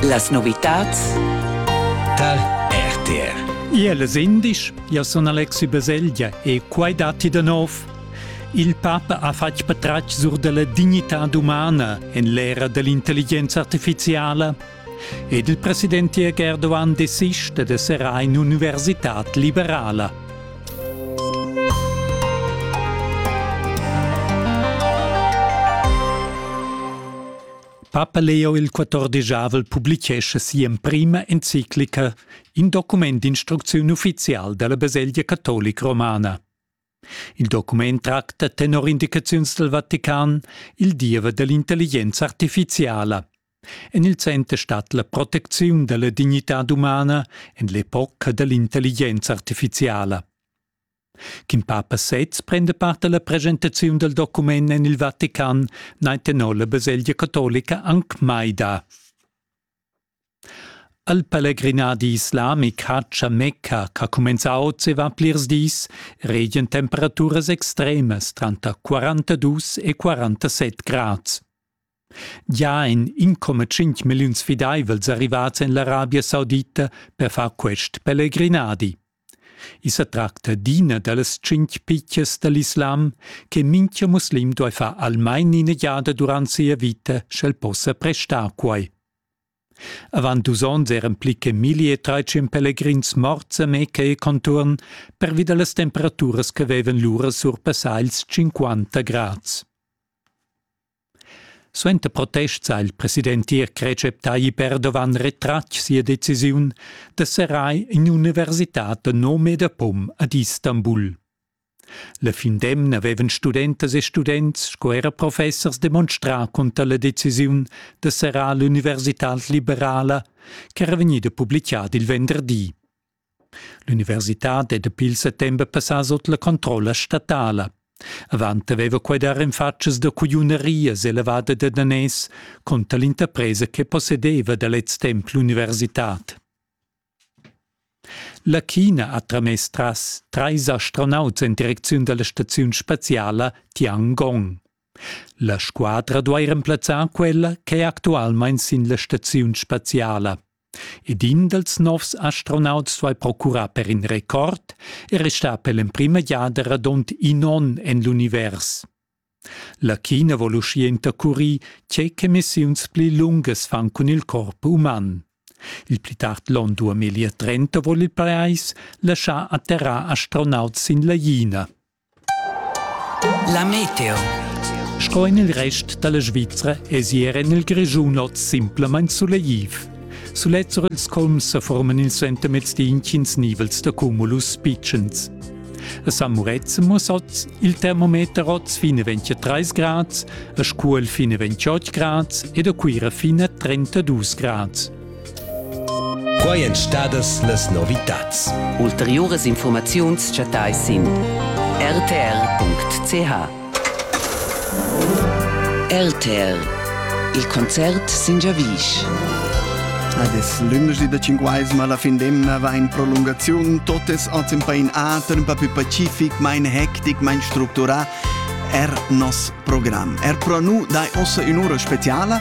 Las novitads Tal RTR Iel es indisch, io sun Alexi Baselgia e quai datti da nov. Il papa ha fatg patratg sur della dignità umana en l'era dell'intelligenza artificiala ed il president Jörg Erdogan desista de serar in università liberala. Papa Leo il quatordegiavel publichescha si'emprima enciclica, in document d'instrucziun ufficial dalla Baselgia catolic romana. Il document tracta tenor indicaziuns del Vatican il diever dell'intelligenza artificiala. En il center stat la protecziun da la dignitad umana en l'epoca da l'intelligenza artifiziala. Ch'in papa sez prenda part alla presentaziun del document en il Vatican nein tenor la baselgia catolica anc mai da. Al pellegrinadi islamic Haccia Mecca, ch'ha cumenzau e va plirs dis, regien temperaturas extremas tranter 42 e 47 grads. Gia ein 1,5 milliun sfideivels arrivats en l'Arabia Saudita per far quest pellegrinadi. I sa tracta d'ina dallas tschintg pitgas dall'islam che mintga muslim duei far almein ina giada durant sia vita, sch'el possa prestar quei. Avant dus onns eran pli che milli e treitschen pelegrins morts a Mecca e conturn pervi dallas temperaturas che vevan lura surpassà ils 50 grads. Suenter protests ha il president tirc Recep Tayyip Erdogan retratg sia decisiun da serrar in'universitad da nome e da pom ad Istanbul. La fin d'emna avevan studentas e students sco era professers demonstrà cunter la decisiun da serrar l'universitad liberala ch'era vegnida publicada il venderdi. L'universitad è dapi il settember passà sut la controlla statala. Avant aveva quai dar en fatschas da cugliunerias elevada da daners conter l'interpresa che possedeva da lez temp l'universitad. La China ha tramess tras trais astronauts en direcziun da la staziun spaziala Tiangong. La squadra duai remplazzar quella ch'è actualmain sin la staziun spaziala. Ed in dals novs astronauts duai procurar per in record e restar per l'emprima giada radund in onn en l'univers. La China vol uschia intercurir tge che missiuns pli lungas fan cun il corp uman. Il pli tard l'onn 2030 vogl il pajais laschar atterrar astronauts sin la China. La meteo. Sco en il rest da la Svizra èsi er en il Grischun oz simplamain sulegliv. Sulet sur ils colms sa forman il suentermezdi intgins nivels da cumulus pitschens. A San Murezzan muss oz il termometer oz fine 23 grad, a Scuol fine 28 grad ed a Cuira fine 32 grad. Quai èn stadas las novitads. Ulteriuras infurmaziuns chattais sin rtr.ch. RTR Il concert sin giavisch. Ed es lundergi da cinquais, ma la fin d'emna va in prolungaziun. Totes oz in pain ater, un pa più pacific, mein hectic, mein structurà. Er nos program. Er pro nu dai ossa ün'ura speciala